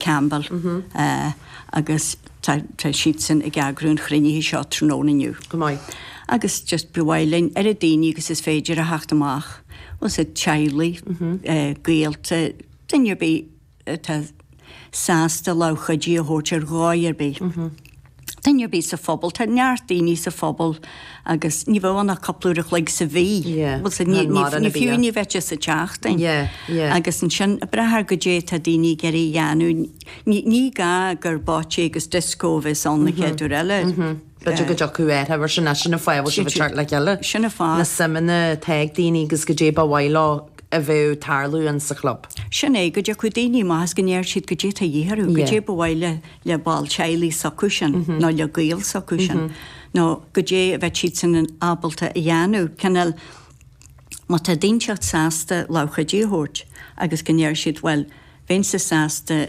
Campbell, agus tá siadsan ag eagrú an chruinnithe seo tráthnóna inniu. Go maith. Agus just ba mhaith linn oiread daoine agus is féidir a theacht amach, agus a dteaghlaigh, gaolta, duine ar bith atá sásta lámh chuidithe a thabhairt ar dhóigh ar bith. duine ar bith sa phobal, tá neart daoine sa phobal agus ní bheadh ann ach cúpla uair an chloig sa mhí, ní fiú ní bheadh sé sa tseachtain. Agus ansin ag brath ar goidé atá daoine ag iarraidh a dhéanamh, ní gá gur bocce agus disco a bheas ann an chéad uair eile. B'fhéidir go dtiocfadh uair eile sin, sin an fáth a bhfuil sibh ag teacht le chéile. Sin an fáth. Na suimeanna atá ag daoine agus goidé ba mhaith leo a bheadh ag tarlú ann sa chlub. Sin é, go dtiocfadh daoine amach is go ndéarfadh siad goidé atá a dhíth orthu, goidé ba mhaith le le ball teaghlaigh s'acusan nó le gaol s'acusan nó goidé a bheadh siadsan ábalta a dhéanamh, cineál má tá daoine teacht sásta lámh chuidithe a thabhairt agus go ndéarfadh siad bhuel bheinnse sásta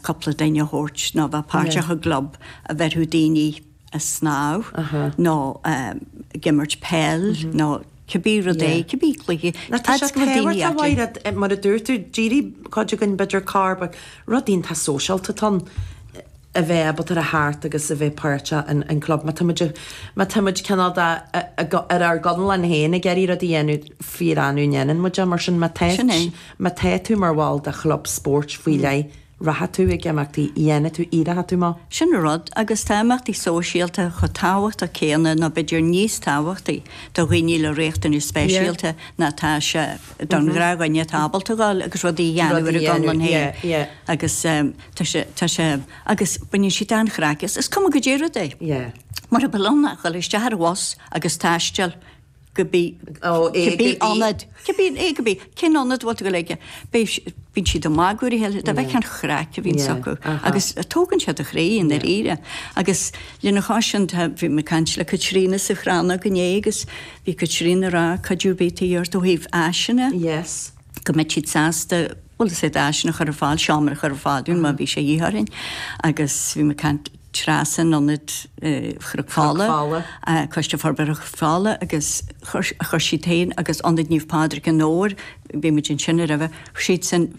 cúpla duine a thabhairt nó a bheith páirteach i gclub a bheirfeadh daoine. a snámh nó ag imirt peil nó cibé rud é, cibé cluiche. Mar tá sé tábhachtach a Mhaighréad, mar a dúirt tú, d'éirigh cuid againn b'fhéidir gur rud iontach sóisialta atá ann a bheith ábalta a theacht agus a bheith páirteach in club má táimid, má táimid cineál de ar ár gconlán féin ag iarraidh rud a dhéanamh fíor annamh a ndéanann muid é mar sin má tá, má tá tú mar bhall de chlub spóirt faoi leith. Rachaidh tú ag imeachtaí? Dhéanfaidh tú iad a thumadh? Sin an rud, agus tá imeachtaí sóisialta chomh tábhachtach céanna nó b'fhéidir níos tábhachtaí do dhaoine le riachtanais speisialta ná atá sé don ghnáthdhuine atá ábalta a ghabháil agus rudaí a dhéanamh ar a gconlán féin. Agus tá sé, tá sé, agus baineann siad an-chraic as. Is cuma goidé an rud é. Mura mbeadh ann ach a ghabháil isteach ar an bhus agus taisteal, cibé ionad, cibé, cibé, cén ionad a bhfuil tú ag gabháil chuige? Bíonn siad ag magadh ar a chéile, do bheith an chraic a bhíonns acu agus tógann sé do chroí i ndáiríre. Agus lena chois sin tá, bhí mé ag caint le Caitríona sa Chrannóg inné agus bhí Caitríona ag rá cuidiú ar bith ag iarraidh ó thaobh áiseanna, go mbeidh siad sásta, bhfuil a fhios agat, áiseanna a chur ar fáil, seomra a chur ar fáil dúinn má bhí sé a dhíth orainn. Agus bhí mé ag caint. Treasa in Ionad Chnoc Fola, Coiste Forbartha Chnoc Fola agus chuir siad féin agus Ionad Naomh Pádraig i nDobhar, bhí muid ansin roimhe, siadsan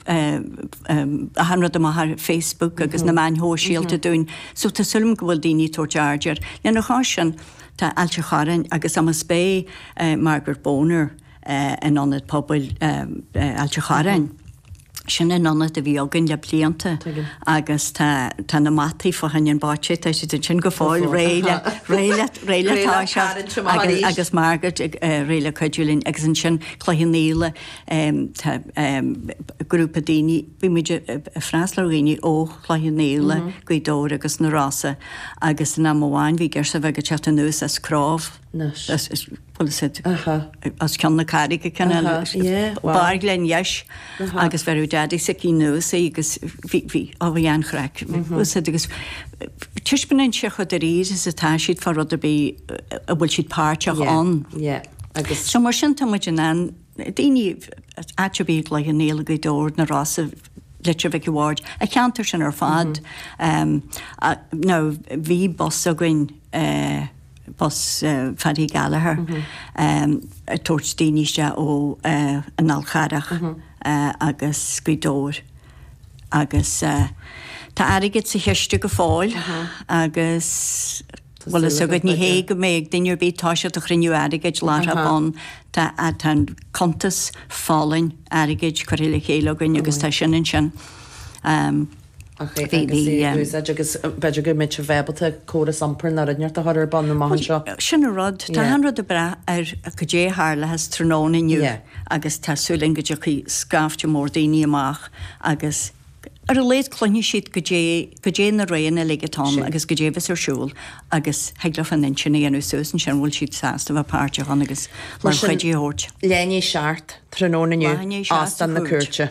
achan rud amach ar Facebook agus na meáin shóisialta dúinn. So tá súil agam go bhfuil daoine ag tabhairt aird air. Lena chois sin, tá Ailt an Chorráin agus Amas Bay, Margaret Boner, in Ionad Pobail Ailt a Chorráin. Sin an t-ionad a bhí againn le blianta agus tá na mataí fá choinne an bocce, tá siad ansin go fóill réidh le réidh le toiseacht agus Margaret réidh le cuidiú linn agus ansin Cloich Cheann Fhaola, tá grúpa daoine, bhí muid ag freastal ar dhaoine ó Chloich Cheann Fhaola, Gaoth Dobhair agus na Rosa agus in am amháin bhí girseach bheag ag teacht anuas as Cróibh, as Gleann Cholm Cille Carraig lena deis agus bheireadh a daidí sise anuas agus bhí an-chraic acu agus taispeánann sé chomh dáiríre is atá siad fá rud ar bith a bhfuil siad páirteach ann. Agus so mar sin tá muid ag iarraidh daoine áit ar bith i gCloich Cheann Fhaola Gaoth Dobhair na Rosa Leitir Mhic an Bhaird an ceantar sin ar fad nó bhí bus againn bus Phaddy Gallagher ag tabhairt daoine isteach ó an Fhál Charrach agus Gaoth Dobhair agus tá airgead sa chiste go fóill agus bhfuil fhios agat ní hé go mbeadh duine ar bith, tabhairt isteach ag cruinniú airgid láithreach bonn, tá cuntas folláin airgid curtha le chéile againn agus tá sin ansin. Ach é agus é a úsáid agus b'fhéidir go mbeidh sibh ábalta córas iompair na Roinneart a chur ar bun amach anseo. Sin an rud. Tá an rud ag brath ar goidé a tharlós tráthnóna inniu agus tá súil againn go dtiocfaidh scaifte mór daoine amach agus ar a laghad cluinfidh siad goidé, goidé na rudaí uilig atá ann agus goidé a bheas ar siúl agus thig leo an intinn a dhéanamh suas ansin an bhfuil siad sásta a bheith páirteach ann agus lámh chuidithe a thabhairt. Leath i ndiaidh a seacht tráthnóna inniu, Óstán na Cúirte.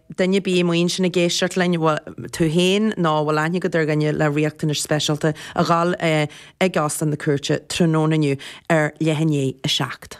duine ar bith amuigh ansin ag éisteacht linn, tú féin nó a bhfuil aithne agat ar dhuine le riachtanais speisialta, a ghabháil chuig Óstán na Cúirte tráthnóna inniu ar leath i ndiaidh a 7.